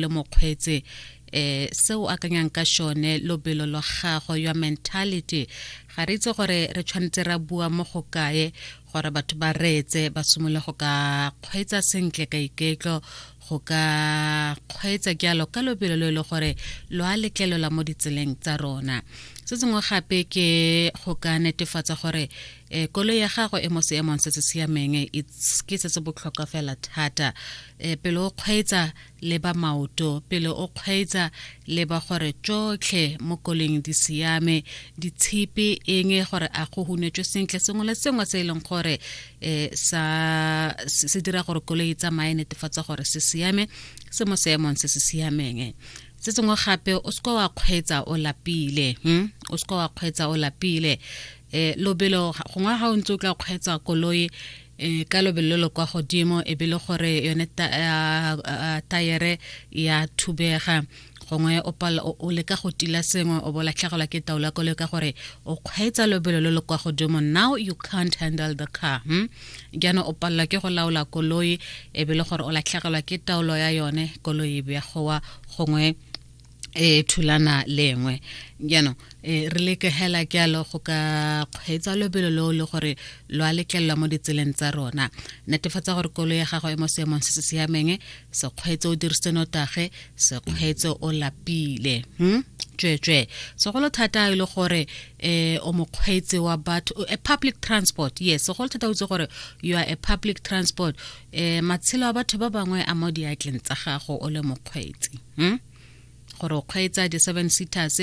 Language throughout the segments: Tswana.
le mokgweetsi eh se o akanyang ka shone lobelo lo gago your mentality ga re itse gore re tshwanetse ra bua mo go kae gore batho ba reetse ba simole go ka kgweetsa sentle ka iketlo go ka kgweetsa jalo ka lobelo lo e le gore lo a letlelela mo ditseleng tsa rona se sengwe gape ke go ka netefatsa gore um kolo ya gago e mo seemong se se siameng ke se se botlhokwa fela thata um pele o kgweetsa le ba maoto pele o kgweetsa leba gore tšotlhe mo koleng di siame ditshipi eng e gore a go hunetswe sentle sengwe le sengwe se e leng gore um sa se dira gore koloi e tsamaye netefatsa gore se siame se mo seemong se se siameng se sengwe gape o seka wa kgweetsa o lapile hm o seka wa kgweetsa o lapile um lobelo gongwe ga o ntse o tla kgweetsa koloi e ka lobelo lo kwa godimo e be le gore yone tayere ya thubega gongwe o leka go tila sengwe o bo latlhegelwa ke taolo ya koloi ka gore o kgweetsa lobelo lo lo kwa godimo now you can't handle the car hmm? jaanong o palelwa ke go laola koloi e be le gore o latlhegelwa ke taolo ya yone koloi e begowa gongwe e thulana lengwe jaanong e re leke hela ke alo go ka kgweetsa lobelo lo le gore lo a letlelelwa mo ditseleng tsa rona netefatsa gore kolo ya gago e mo seemong se se siameng se kgweetse o dirisitse notage se kgweetse o lapile hmm? tsweetswee segolo thata e le gore um o mokgweetsi wa batho a public transport yes segolo thata o itse gore you are a public transport e matshelo a batho ba bangwe a mo diatleng tsa gago o le mokgweetsi hmm? gore o kgweetsa di-seven seaters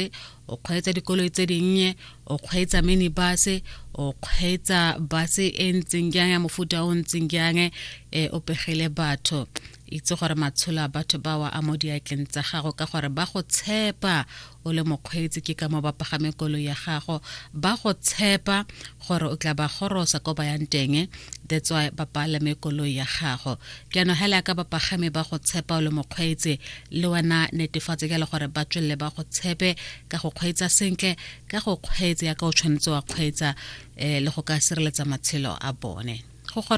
o kgweetsa dikoloi tse dinnye o kgweetsa minibus o kgweetsa base e ntseng jang ya mofuta o ntseng jang e o pegele batho itse gore matsholo a batho bawa a mo diatleng tsa gago ka gore ba go tshepa o le mokgweetsi ke ka mo ba pagame kolo ya gago ba go tshepa gore o tla ba gorosa ko ba yang teng that's why ba palame kolo ya gago ke ano hela ka ba pagame ba go tshepa o le mokgweetsi le wena netefatse ka le gore ba tswelele ba go tshepe ka go kgweetsa sentle ka go kgweetsa ya ka o tshwanetse wa kgweetsa um le go ka sireletsa matshelo a bone